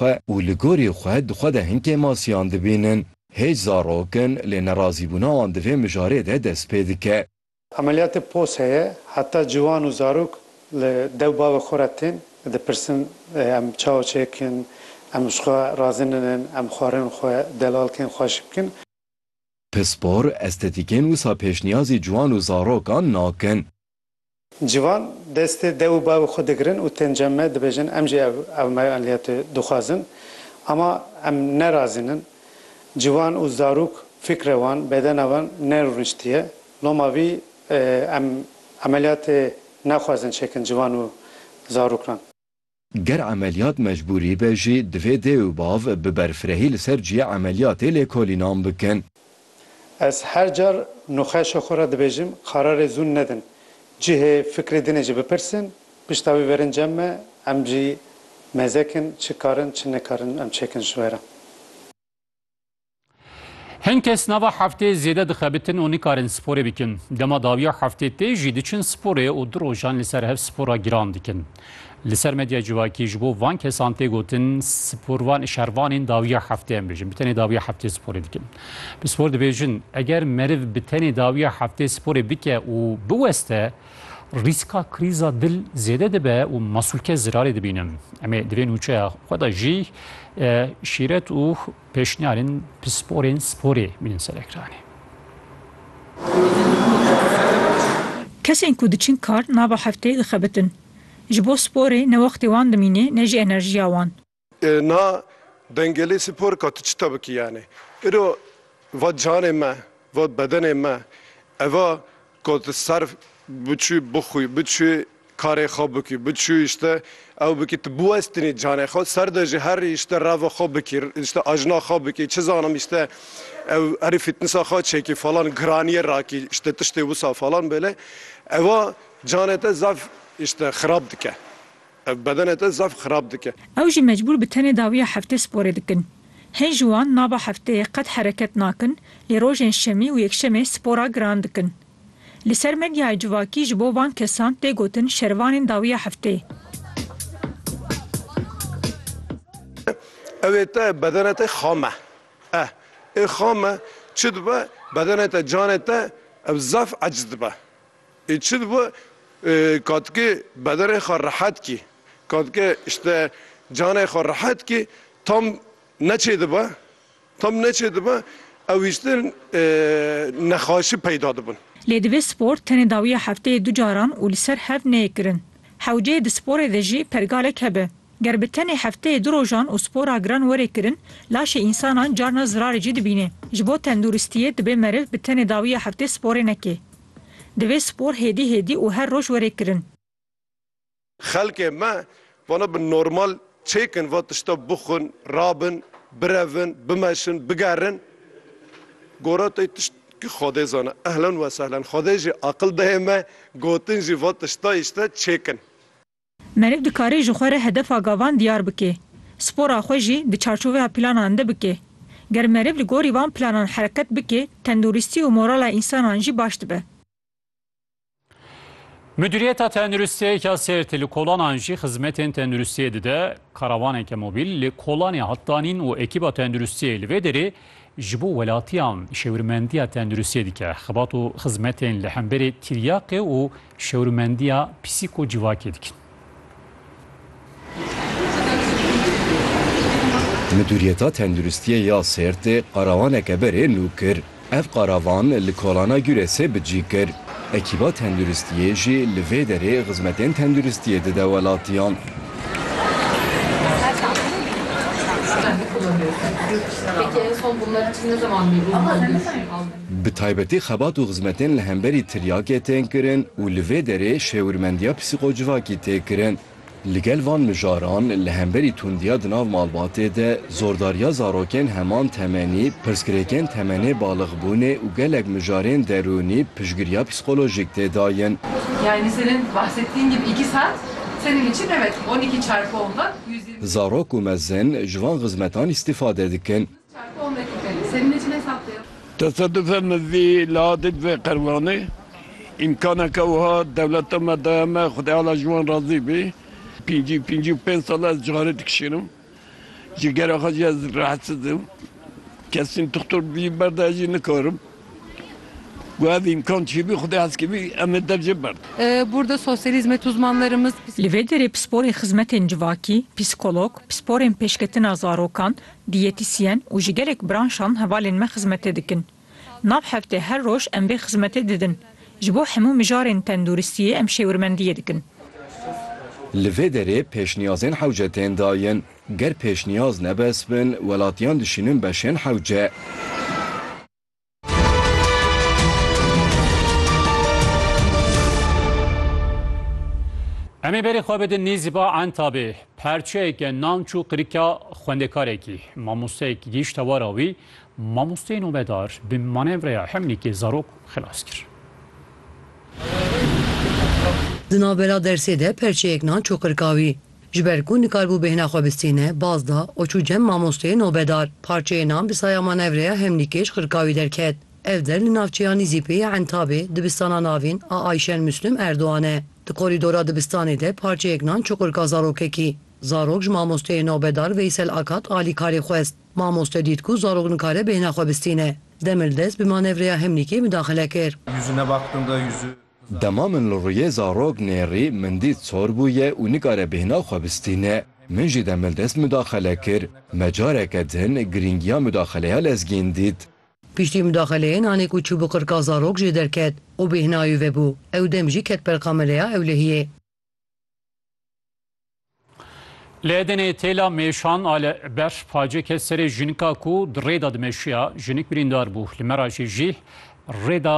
xwe û li gorî xwe di xwe de hin kêmasiyan dibînin. Hêj zarok in lê nerazîbûna wan di vê mijarê de dest pê dike. Emeliyatê pos heye, heta ciwan û zarok li dew bavê xwe re tên, dipirsin em çawa çêkin, em ji xwe razî ninin, em xwarin xwe delal kirin, xwe ji bikin. Pispor, estetîkên wisa pêşniyazî ciwan û zarokan nakin. Ciwan destê dew û bavê xwe digirin û tên cem me dibêjin em jî ev ewnayo enliyetê dixwazin. Ama em ne razînin. Ciwan û zarok fîkrê wan, bedena wan nerûniştiye. Loma vî em emeliyatê nexwazin çêkin ciwan û zarokan. Ger emeliyat mecbûrî be jî divê dê û bav bi berfirehî li ser cihê emeliyatê lêkolînan bikin. Ez her car nûxeşê xwe re dibêjim kararê zûn nedin. Cihê fikrê dinê jî bipirsin, pişta wî verin cem me, em jî mezekin çi karin çi nikarin em çêkin ji we re. Hin kes nava heftê zêde dixebitin û nikarin sporê bikin. Dema dawiya heftê tê jî diçin sporê û du rojan li ser hev spora giran dikin. Li ser medya civakî ji bo van kesan tê gotin sporvan şervanên dawiya heftê em bêjin bi tenê dawiya heftê sporê dikin. Bi spor dibêjin eger meriv bi tenê dawiya heftê sporê bike û biweste rîska krîza dil zêde dibe û masûlke zirarê dibînin. Em ê divê nûçeya xwe de jî şîret û Pêşniyarên pisporên sporê mînin ser ekranê. Kesên ku diçin kar nava hefteyê dixebitin. Ji bo sporê ne wextê wan dimînê ne jî enerjiya wan. Na dengelê spor ka tu çita bikî yanê îro va canê me, va bedenê me, eva Ku tu ser biçû bixwî, biçû karê xwe bikî, biçû îşte ew bikî, tu biwestinî canê xwe ser de jî her îşte reva xwe bikî, îşte ajna xwe bikî, çi zanim îşte ew herî fîtnisa xwe çêkî falan giraniyê rakî, îşte tiştê wisa falan bêle, eva canê te zaf îşte xirab dike. Ev bedenê te zaf xirab dike. Ew jî mecbûr bi tenê dawiya heftê sporê dikin. Hin ji wan nava hefteyê qet hereket nakin lê rojên şemî û yekşemê spora giran dikin. Li ser medyayê civakî ji bo van kesan tê gotin şervanên dawiya hefteyê. Ew ê te bedenê te xam e. Eh ê xam e çi dibe bedenê te canê te ew zaf eciz dibe. Ê çi dibe katikê bedenê xwe rehet kî, katikê îşte canê xwe rehet kî tam neçê dibe, tam neçê dibe ew îşte nexaşî peyda dibin. Lê divê spor tenê dawiya hefteyê du caran û li ser hev neyê kirin. Hewceyê di sporê de jî pergalek hebe. Ger bi tenê hefteyê du rojan û spora giran were kirin, laşê însanan carna zirarê cî dibîne. Ji bo tenduristiyê dibe meriv bi tenê dawiya heftê sporê neke. Divê spor hêdî hêdî û her roj were kirin. Xelkê me vana bi normal çêkin va tişta bixwin, rabin, birevin, bimeşin, bigerin. Goratey tişt ki xwe dê zana. Ehlen wesehlen. Xwedê jî aqil dayê me gotin jî va tiştayî işte çêkin. Meriv dikare ji xwe re hedefa gavan diyar bike, spora xwe jî di çarçoveya planan de bike. Ger meriv li gorî van planan hereket bike, tenduristî û morala însanan jî baş dibe. Midûriyeta Tenduristiyê ya Sêrtê li kolanan jî xizmetên tenduristiyê dide. Karavaneke mobîl li kolanê hat danîn û ekîba tenduristiyê li vê derê ji bo welatiyan şêwirmendiya tenduristiyê dike. Xebat û xizmetên li hemberî tiryaqê û Şewrimendîya pîsîko civakê dikin. Midûriyeta Tenduristiyê ya Sêrtê qarawaneke berê nû kir. Ev qaravan li Kolana Gûresê bi cî kir. Ekîba Tenduristiyê jî li vê derê xizmetên tenduristiyê dide welatiyan. Bi taybetî xebat û xizmetên li hemberî tiryakê tên kirin û li vê derê şêwirmendiya psîkocivakî tê kirin. Li gel van mijaran li hemberî tundiya di nav malbatê de, zordariya zarokên heman temenî, pirsgirêkên temenê balixbûnê û gelek mijarên derûnî piştgiriya psîkolojîk tê dayin. Zarok û mezin ji van xizmetan îstîfade dikin. Tesadûfe min vî lahatî divê qerwanê. Îmkaneke wiha dewleta me daye me, Xwedayala ji wan razî bî. Pêncî pêncî û pênc sal e ez cixarê dikişînim. Ji gera xwe jî ez rehetsiz im. Kesî dixtor bi vî berda ez jî nikarim. Got ev îmkan çi bî Xwedê heskî bî em ê dev jê berdin. Li vê derê pisporên xizmetên civakî, psîkolog, pisporên pêşketina zarokan, Dîyetisyen û ji gelek branşan hevalên me xizmetê dikin. Nav heftê her roj em vê xizmetê didin. Ji bo hemû mijarên tenduristiyê em şêwirmendiyê dikin. Li vê derê pêşniyazên hewce tên dayin. Ger pêşniyaz nebes bin, welatiyan dişînin beşên hewce. Em ê berê xwe bidin Nêzîba Entabê, perçeyeke nam çû qirika xwendekarekî. Mamosteyek gihîşt hewara wî, mamosteyê nobedar bi manevreya hemlîkê zarok xilas kir. Di navbera dersê de perçeyek nan çû qirika wî. Ji ber ku nikarbû bêhna xwe bistîne, baz da, û çû cem mamosteyê nobedar. Parçeyê nan bi saya manevreya hemlîkê ji xirkawî derket. Ev der li navçeya Nîzîpê ya Entabê, dibistana navîn a Ayşen Muslum Erdogan e. Di korîdora dibistanê de parçeyek nan çuqurka zarokekî. Zarok ji mamosteyê nobedar Veysel Akat alîkarî xwest. Mamoste dît ku zarok nikare bêhna xwe bistîne. Demildest bi manevreya hemlîkê midaxile kir. Dema min li rûyê zarok nêrî, min dît sor bûye û nikare bêhna xwe bistîne. Min jî demil dest mudaxele kir. Me careke din girîngiya mudaxeleya lezgîn dît. Piştî mudaxeleyê nanê ku çû bi qirka zarok jê derket û bêhnayê ve bû. Ew dem jî ket ber kameleya ewlehiyê. Li Edenê têla mêşan a li ber pacê ket serê jinika ku di rêda dimeşiya. Jinik birîndar bû. Li me ra jî jî rêda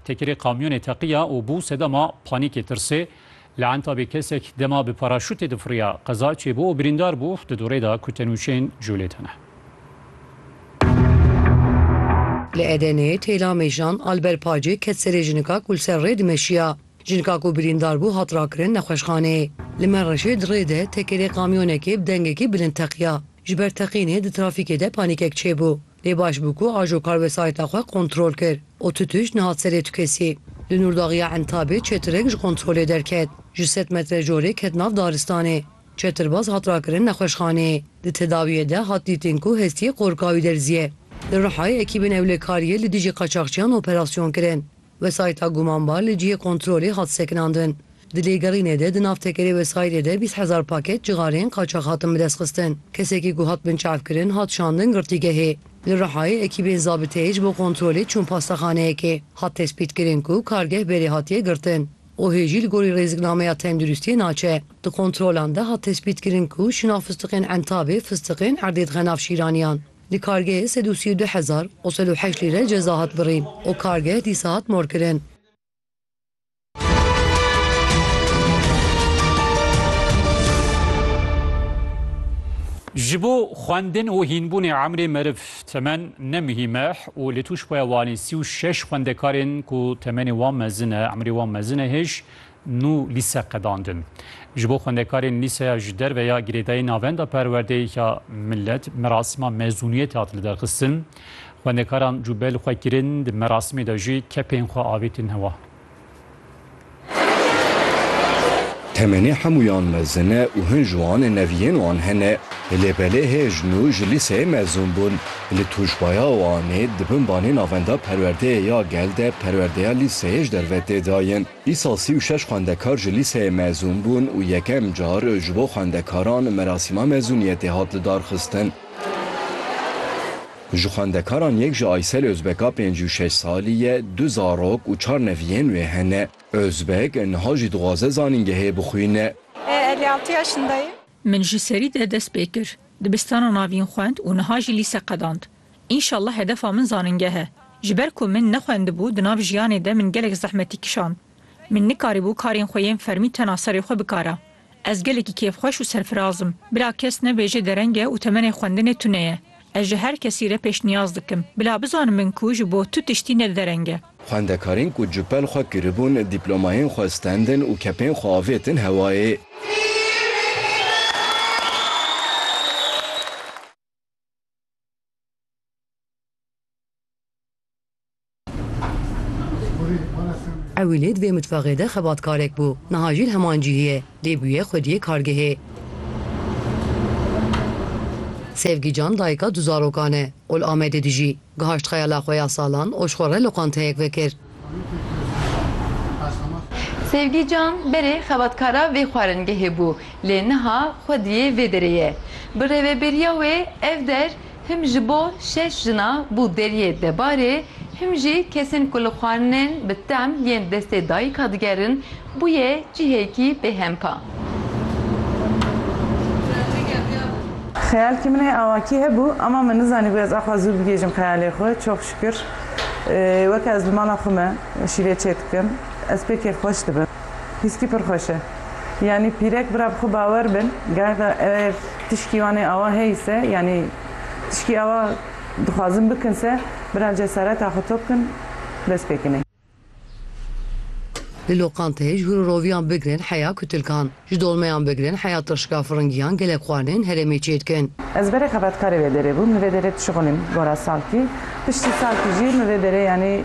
tekerê kamyonê teqiya û bû sedema panîkê tirsê. Li Entabê kesek dema bi paraşûtê difiriya. Qeza çêbû û birîndar bû di dorê de ku tenûçeyên colê de ne. Li Edenê têla mêşan a li ber pacê ket serê jinika ku li ser rê dimeşiya. Jinka ku birîndar bû hat rakirin nexweşxanê. Li Menreşê di rê de tekerê kamyonekê bi dengekî bilind teqiya. Ji ber teqînê di trafîkê de panîkek çêbû. Lê baş bû ku ajo kar wesayîta xwe kontrol kir û tu tişt nehat serê tukesî. Li Nûrdaxya Entabê çetirek ji kontrolê derket. Ji sed metre jorê ket nav daristanê. Çetirbaz hat rakirin nexweşxanê. Di tedawiyê de hat dîtin ku hestiyê qorikawî derziye. Li Rihayê ekîbên ewlekariyê li dijî qaçaxçiyan operasyon kirin. Wesayîta gumanbar li cihê kontrolê hat sekinandin. Di lêgerînê de di nav tekerê wesayîdê de bîst hezar paket cixarên qaçax hatin bidestxistin. Kesekî ku hat binçavkirin hat şandin girtîgehê. Li Rihayê ekîbên zabiteyê ji bo kontrolê çûn pastaxaneyekê. Hat tespîtkirin ku kargeh berê hatiye girtin û hê jî li gorî rêziknameya tenduristiyê naçe. Di kontrolan de hat tespîtkirin ku şinan fistiqên Entabê, fistiqên erdê dixe nav şîraniyan. Di kargehê sed û sî û du hezar û sed û heşt lîre ceza hat birîn û kargeh dîsa hat morkirin. Ji bo xwendin û hînbûnê emrê meriv temen ne muhîm e û li Tûşbaya Wanê sî û şeş xwendekarên ku temenê wan mezin e, emrê wan mezin e hêj Nû lîse qedandin. Ji bo xwendekarên lîseya ji derve ya girêdayî Navenda Perwerdeyê ya Milet merasîma mezûniyetê hat lidarxistin. Xwendekaran cûbe li xwe kirin, di merasimê de jî kepên xwe avêtin hewa. Temenê hemûyan mezin e û hin ji wan neviyên wan hene. Lê belê hê ji nû ji lîseyê mezûn bûn. Li tûjbaya Wanê di bin banê Navenda Perwerdeyê ya Gel de perwerdeya lîseyê ji derve tê dayin. Îsal sî û şeş xwendekar ji lîseyê mezûn bûn û yekem car ji bo xwendekaran merasîma mezûniyetê hat lidarxistin. Ji xwendekaran yek ji Aysel Ozbek a pêncî û şeş salî ye, du zarok û çar neviyên wê hene. Ozbek niha jî dixwaze zanîngehê bixwîne. Min ji serî de dest pê kir. Dibistana navîn xwend û niha jî lîse qedand. Înşallah hedefa min zanîngeh e. Ji ber ku min nexwendibû di nav jiyanê de min gelek zehmetî kişand. Min nikarîbû karên xwe yên fermî tena serê xwe bikara. Ez gelekî kêfxweş û serfiraz im. Bila kes nebêje dereng e û temenê xwendinê tune ye. Ez ji her kesî re pêşniyaz dikim. Bila bizanin min ku ji bo tu tiştî ne dereng e. Xwendekarên ku cupel xwe kiribûn, dîplomayên xwe stendin û kepên xwe avêtin hewayê. Ewilî di vê mitbaxê de xebatkarek bû, niha jî li heman cihê ye, lê bûye xwediyê kargehê. Sevgî Can dayika du zarokan e û li Amedê dijî. Gihaşt xeyala xwe ya salan û ji xwe re loqanteyek vekir. Sevgî Can berê xebatkara vê xwaringehê bû, lê niha xwediyê vê derê ye. Bi rêveberiya wê ev der Him ji bo şeş jina bû deriyê debarê, him jî kesên ku li xwarinên bi tem yên destê dayika digerin bûye cihêkî bêhempa. Xeyalkî min ê awakî hebû ema min nizanîbû ez axwe zû bigihîjim xeyalê xwe. Çok şükür weke ez bi mala xwe me şîvê çêdikim ez pê kêfxweş dibim. Hîskî pir xweş e. Yanî pîrek bira bi xwe bawer bin, garda ev tişkî wan ê awa heyî se, yanî tişkî awa dixwazin bikin se, bira cesareta xwe top kin, dest pê kinê. Li loqanteyê ji hûrûroviyan bigirin heya kutilkan, ji dolmeyan bigirin heya tirşika firingiyan gelek xwarinên herêmê çê dikin. Ez berê xebatkarê vê derê bûm, li vê derê dişuxulîm gora salkî, piştî salkî jî min vê derê yanî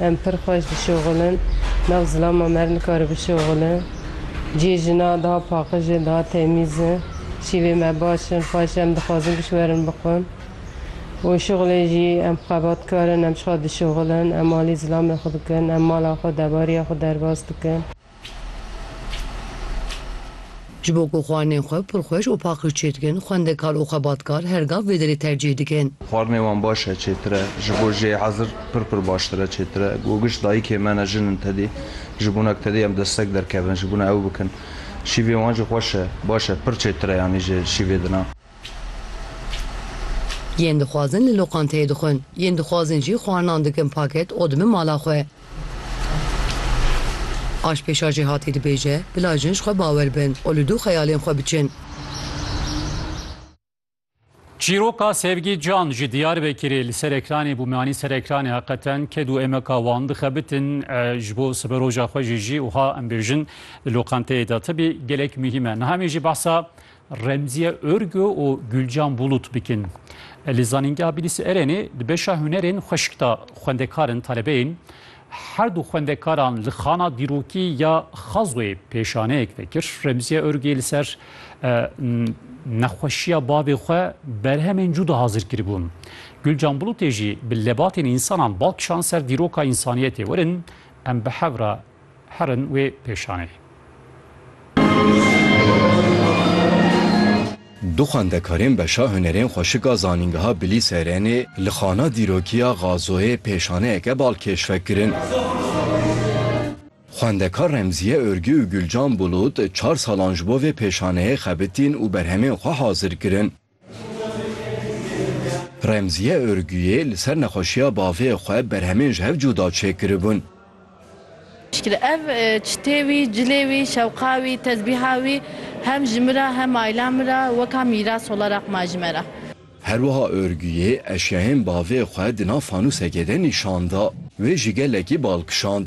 Em pir xweş dişoxulin. Nav zilama me re nikare bişoxile. Cihê jinan daha paqij e, daha temîz e. Şîvê me baş in, xweş e. Em dixwazin giş werin bixwin. Û şixulê jî em xebatkar in, em ji xwe dişoxilin. Em alî zilamê xwe dikin, em mala xwe, debariya xwe derbas dikin. Ji bo ku xwarinên xwe pirxweş û paqij çêdikin, xwendekar û xebatkar her gav vê derê tercîh dikin. Xwarinê wan baş e, çêtir e. Ji bo jê hezir pir pir baştir e, çêtir e. Ku giş dayikê me ne jin in tedê, ji bona ku tedê em destek derkevin, ji bona ew bikin. Şîvê wan jî xweş e, baş e, pir çêtir e yanî ji şîvê din a. Yên dixwazin li loqanteyê dixwin. Yên dixwazin jî xwarinan dikin paket û dibin mala xwe. Aşpêşa jî hatî dibêje, bila jin ji xwe bawer bin û li dû xeyalên xwe biçin. Çîroka Sevgi Can ji Diyarbekirê li ser ekranê bû, me anî ser ekranê heqeten ked û emeka wan dixebitin ji bo siberoja xwe jî jî wiha em bêjin, li loqenteyê de tibî gelek muhîm e. Niha em ê jî behsa Remziye Örgü û Gülcan Bulut bikin. Li Zanîngeha Bilîsê Erenê di beşa hunerên xweşik de xwendekar in talebeyên her du xwendekaran li xana dîrokî ya Xazoyê pêşaneyek vekir. Remziye Örgüyê li ser nexweşiya bavê xwe berhemên cuda hazir kiribûn. Gülcan Bulutê jî bi lebatên însanan bal kişand ser dîroka însaniyetê werin em bi hev re Herin wê pêşanê. Du xwendekarên beşa hunerên xweşika zanîngeha Bilîserenê li xana dîrokiya Gazoyê pêşaneyeke bal keşfek kirin. Xwendekar Remziye Örgü û Gülcan Bulut çar salan ji bo vê pêşaneyê xebitîn û berhemên xwe hazir kirin. Remziye Örgüyê li ser nexweşiya bavê xwe berhemên ji hev cuda çêkiribûn. Şikî ev çitê wî, cilê wî, şewqa wî, tezbîha wî hem ji min re hem aîla min re weka mîras sola raqma ji me re. Her wiha Örgüyê eşyayên bavê xwe di nav fanûsekê de nîşan da. Wê ji gelekî bal kişand.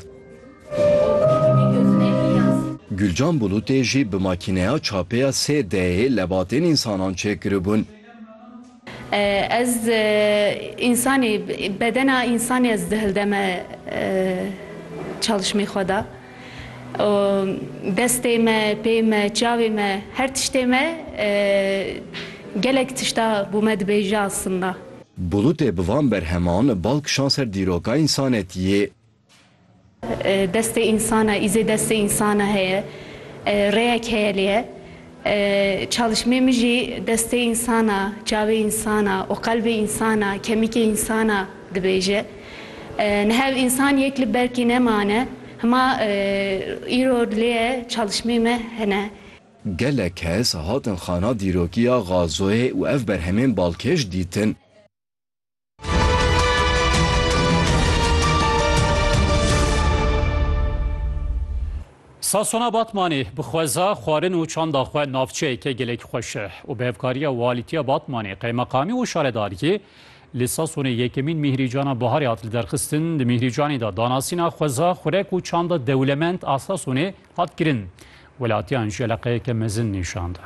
Gulcan Bulutê jî bi makîneya çapê ya sê d'ê lebatên însanan çêkiribûn. Ez însanî, bedena însanî ez dihildeme çalîşmê xwe de û destê me, pê me, çavê me, her tiştê me gelek tişta bo me dibêje aslında. Bulutê bi van berheman bal kişand ser dîroka însanetiyê. Destê însana îzê destê însana heye, rêyek heye lê çalîşmê min jî destê însana, çavê însana û qelbê însana, kemîkê însana dibêje. Nihev însan yek li berkî nemane, hima îro lê çalîşmê me hene. Gelek kes hatin xana dîrokiya Gazoyê û ev berhemên balkêş dîtin. Sasona Batmanê bi xweza xwarin û çanda xwe navçeyeke gelek xweş e û bi hevkariya walîtiya Batmanê, qeymeqamî û şaredariyê li Sasonê yekemîn mîhrîcana biharê hat liderxistin. Di mîhrîcanê de danasîna xweza xurek û çanda dewlemend a Sasonê hat kirin, welatiyan ji eleqeyeke mezin nîşan da.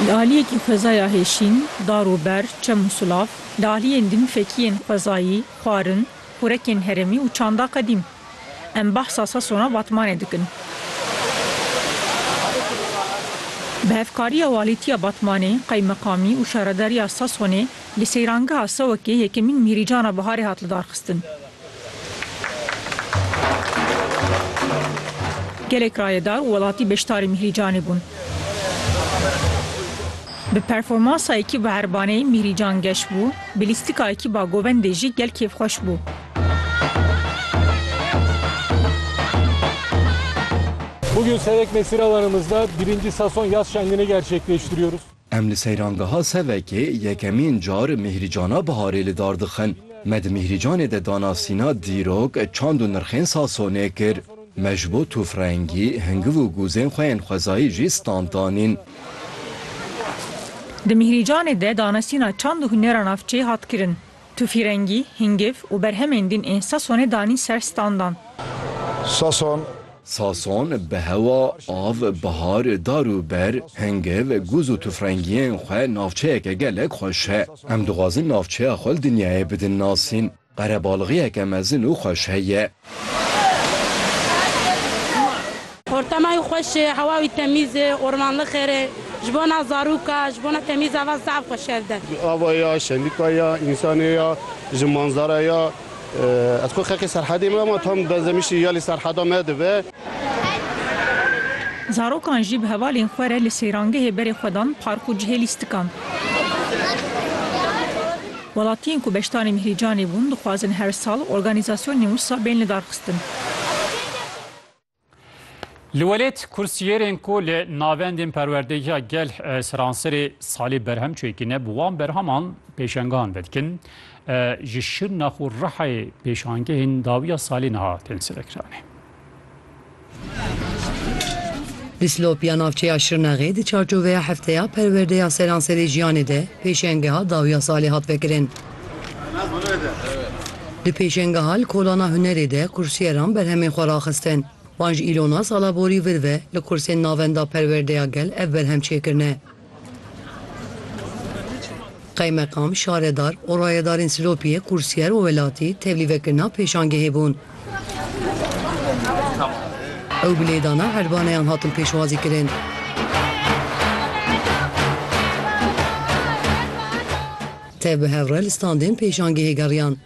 Li aliyekî xwezaya Hêşîn, Dar û Ber, Çem û Sulav, li aliyên din fekiyên xwezayî, xwarin, xurekên herêmî û çanda qedîm. Em behsa Sasona Batmanê dikin. Bi hevkariya Walîtiya Batmanê, Qeymeqamî û Şaredariya Sasonê Li seyrangeha Sewekê yekemîn Mîhrîcana Biharê hat lidarxistin. Gelek rayedar û welatî beşdarî Mîhrîcanê bûn. Bi performansa Ekîba Erbaneyê Mîhrîcan geş bû, bi lîstika Ekîba Govendê jî gel kêfxweş bû. Bugün Sevek Mesire Alanımızda birinci sezon yaz şenliğini gerçekleştiriyoruz. Em li seyrangeha Sevekê yekemîn car Mîhrîcana Biharê li dar dixin. Me di Mîhrîcanê de danasîna dîrok, çand û nirxên Sasonê kir. Me ji bo tûfrengî, hingiv û gûzên xwe yên xwezayî jî stand danîn. Di Mîhrîcanê de danasîna çand û hunera navçeyê hat kirin. Tufîrengî, hingiv û berhemên din ên Sasonê danîn ser standan. Sason. Sason bi hewa, av, bihar, dar û ber, hingiv, gûz û tufrengiyên xwe navçeyeke gelek xweş e. Em dixwazin navçeya xwe li dinyayê bidin nasîn. Qerebalixiyeke mezin û xweş heye. Ortama wî xweş e, hewa wî temîz e, ormanlıq xêr e. Ji bona zarûka, ji bona temîza van saet xwe şer de. Ava ya, şenlika ya, însanê ya, ji manzara ya. Ez xwe xeqê serhedê me ama tam benzemişî ya lê serheda me dibe. Zarokan jî bi hevalên xwe re li seyrangehê berê xwe dan park û cihê lîstikan. Welatiyên ku beşdarên Mihrîcanê bûn dixwazin her sal organîzasyonên wisa bên lidarxistin. Li welêt kursiyêrên ku li navendên perwerdehiya gel seranserê salê berhem çêkirine bi wan berheman pêşengan vedikin. Ji Şirnax û Rihayê pêşangehên dawiya salê niha tên selekiranî. Dislop ya navçeya Şirnexê di çarçoveya Hefteya Perwerdeya Seranserê Jiyanê de pêşengeha dawiya salê hat vekirin. Di pêşengeha li kolana hunerê de kursîyeran berhemên xwe raxistin. Van ji îlona sala borî vir ve li kursên navenda Perwerdeya Gel ev berhem çêkirine. Qeymeqam, şaredar û rayedarên Silopiyê, Kursîyer û Welatî tevlî vekirina pêşangehê bûn. Ew bi lêdana hervaneyan hatin pêşwazî kirin. Tev bi hev re li standên pêşangehê geriyan.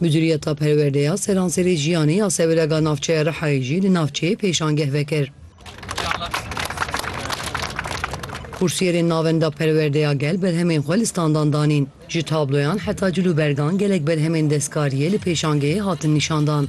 Mudiriyeta Perwerde ya Seranserê Jiyanê ya Sevrega Navçeya Rihayê jî li navçeyê pêşangeh vekir. Kursiyerên Navenda Perwerdeya Gel berhemên xwe li standan danîn. Ji tabloyan heta cil û bergan gelek berhemên destkariyê li pêşangehê hatin nîşandan.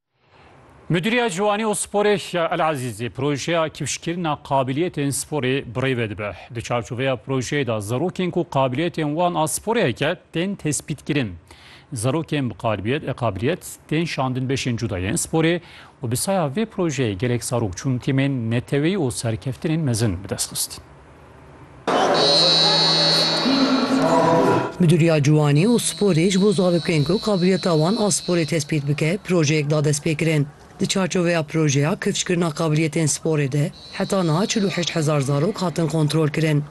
Midûriya Ciwanî û Sporê ya Elezîzê projeya kifşkirina qabiliyetên sporê bi rê ve dibe. Di çarçoveya projeyê de zarokên ku qabiliyetên wan a sporê heke tên tespîtkirin. Zarokên bi qalibiyet e qabiliyet tên şandin beşên cuda yên sporê û bi saya vê projeyê gelek zarok çûn tîmên neteweyî û serkeftinên mezin bi dest xistin. Midûriya Ciwanî û Sporê ji bo zarokên ku qabiliyeta wan a sporê tespît bike projeyek da destpêkirin. Di çarçoveya projeya kifşkirina qabiliyetên sporê de heta niha çil û heşt hezar zarok hatin kontrolkirin.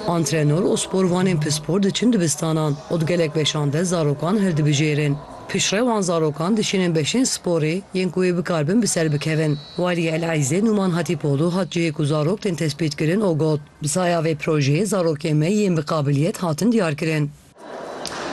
Antrenor û sporvanên pispor diçin dibistanan û di gelek beşan de zarokan hildibijêrin. Piştrewan zarokan dişînin beşên sporê yên ku wê bikaribin bi ser bikevin. Waliyê Elezizê Nûman Hatîpoglu hat cihê ku zarok tên tespîtkirin û got, Bi saya vê projeyê zarokên me yên bi qabiliyet hatin diyarkirin.